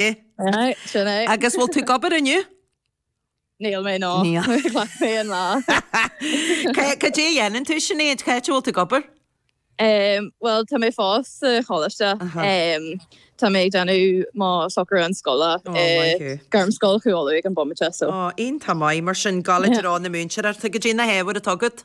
Sin é. Agus bhfuil tú ag obair inniu? Níl mé, ná. Níl. Ghlac mé an lá. Cad cad é a dhéanann tú, Sinéad? Cá háit a bhfuil tú ag obair? Um, well, tá mé fós sa choláiste. Aha. Um, tá mé ag déanamh mo shocrúchán scoile. Oh, eh, maith. Gairmscoil Chú Uladh ag an bomaite, so. Ó, iontach maith, mar sin ag gabháil Yeah. i dtreo na múinteoireachta, cad é na hábhair atá agat.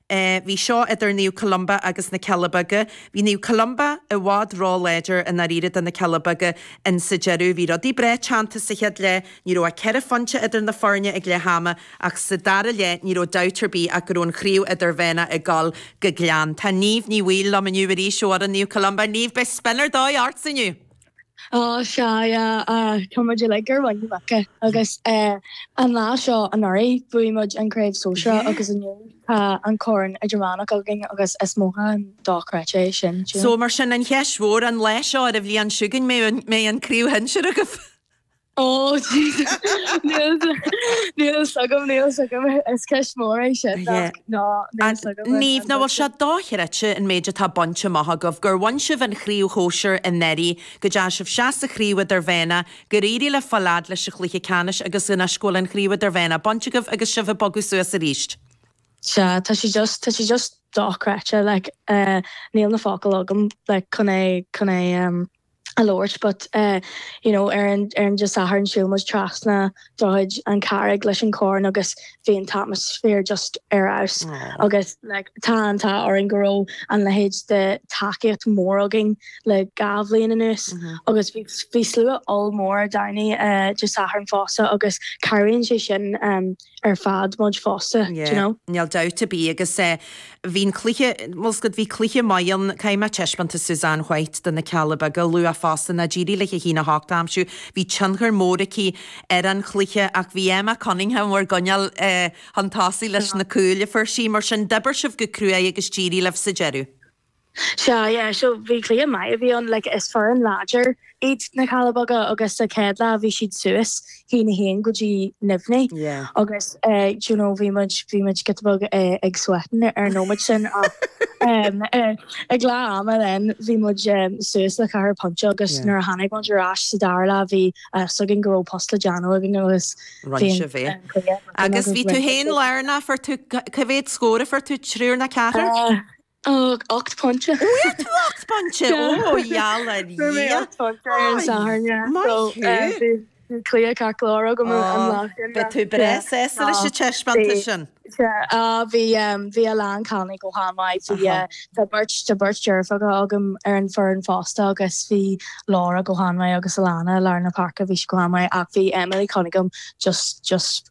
Bhí seo idir Naomh Columba agus na Cealla Beaga. Bhí Naomh Columba i bhfad ró-láidir i ndáiríre do na Cealla Beaga in sa deireadh. Bhí rudaí breá teannta sa chéad leath. Ní raibh ach ceithre phointe idir na foirne ag leath ama ach sa dara leath ní raibh dabht ar bith ach go raibh an chraobh idirmheánach ag dul go Gleann. Tá Niamh Ní Bhaoill liom inniu arís ó fhoireann Naomh Columba. Niamh, beidh spion ar dóigh ortsa inniu! Á, sea, tá muid uilig ar mhuin na muice. Agus an lá seo anuraidh, bhuaigh muid an Chraobh Sóisear agus inniu tá an Corn Idirmheánach againn agus is mothúchán dochreidte é sin, so. Mar sin, an cheist mhór an lá seo, ar an bhliain seo chugainn, mbeidh an Chraobh Shinsir agaibh? Ó, jeez. Níl 's, níl 's agam, níl 's agam. Is ceist mhór é sin, Aye. ach ná, níl An, 's agam an, Niamh, an nach bhfuil sé dóite. dochreidte an méid atá bainte amach agaibh, gur bhain sibh an chraobh shóisir anuraidh, go dteachaidh sibh isteach sa Chraobh Idirmheánach, gur éirigh libh fáil a fhad leis an chluiche ceannais agus anois go bhfuil an Chraobh Idirmheánach bainte agaibh agus sibh ag bogadh suas arís. Sea, tá sé just, tá sé just dochreidte, like, eh, níl na focail agam, like, chun é, chun é, em, a labhairt but eh you know ar an ar an Dé Sathairn shiúil muid trasna droichid an Charraig leis an corn agus bhí an t-atmaisféar just ar fheabhas agus like tá an t-ádh orainn go raibh an leithéid de tacaíocht mhór againn le dhá bhliain anuas agus bhí bhí slua ollmhór Domhnaigh eh Dé Sathairn fosta agus cabhraíonn sé sin ehm ar fad muid fosta, d'you know. Níl dabht ar bith agus bhí an cluiche, bhuel scud, bhí cluiche maith ann, caithfidh mé taispeántas Susanne White do na Cealla Beaga a lua fosta, nó d'éirigh léithi a haon a hocht a aimsiú, bhí tionchar mór aici ar an chluiche ach bhí Emma Cunningham bhur gcoinneáil chun tosaigh leis na cúil a fuair sí, mar sin d'oibir sibh go cruaidh agus d'éirigh libh sa deireadh. Sea, yeah, so bhí cluiche maith a bhí ann, like is foireann láidir iad na Cealla Beaga agus sa chéad leath bhí siad suas, a haon a haon go dtí neamhní Yeah. agus eh do you know bhí muid, bhí muid giota beag eh ag sweatin' ar an nóiméad sin ach em eh ag leath ama then bhí muid em suas le ceathair pointe agus Yeah. nuair a tháinig muid ar ais sa dara leath bhí a fhios againn go raibh post le déanamh againn agus Rinne bhí an sibh é. eh, cluiche againn Agus bhí tú rinne féin sibh. lárnach, fuair tú, ca- cé mhéad scór a fuair tú, triúr nó ceathrar? Eh, Ach ocht bpointe. Fuair tú ocht bpointe? Ó, gheall ar Dhia. Fuair mé ocht bpointe ar an Satharn, yeah. Maith thú. Bhí cluiche ceart go leor agam an lá sin. Ó, beidh tú breá sásta leis an taispeántas sin. Sea, bhí a lán cailíní go han-mhaith. Bhí, tá beirt, tá beirt deirfiúracha agam ar an bhfoireann fosta agus bhí Laura go han-mhaith agus Alannah i lár na páirce, bhí sí go han-mhaith ach bhí Emily Cunningham just, just,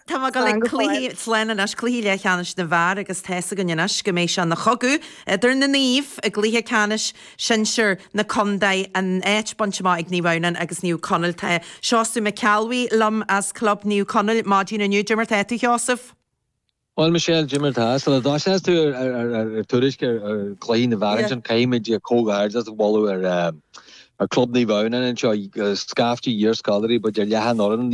Tá mé ag dul ag cluichí, slán anois, cluichí leathcheannais na bhfear agus tá 'fhios againn anois go mbeidh sé ina chogadh idir na naoimh i gcluiche ceannais sinsear na contae, an áit bainte amach ag Naomh Adhamhnáin agus Naomh Conaill. Tá Seosamh Mac Ceallbhuí liom as club Naomh Conaill maidin inniu. Cad é mar tá tú, a Sheosaimh? Bhuel Michelle, cad é mar tá, sula dtosaíos tú ar tuairisc ar chluichí na bhfear ansin caithfimid comhghairdeas a mholadh ar club Naomh Adhamhnáin anseo, scaifte d'iarscoláirí, ba de leath an fhoireann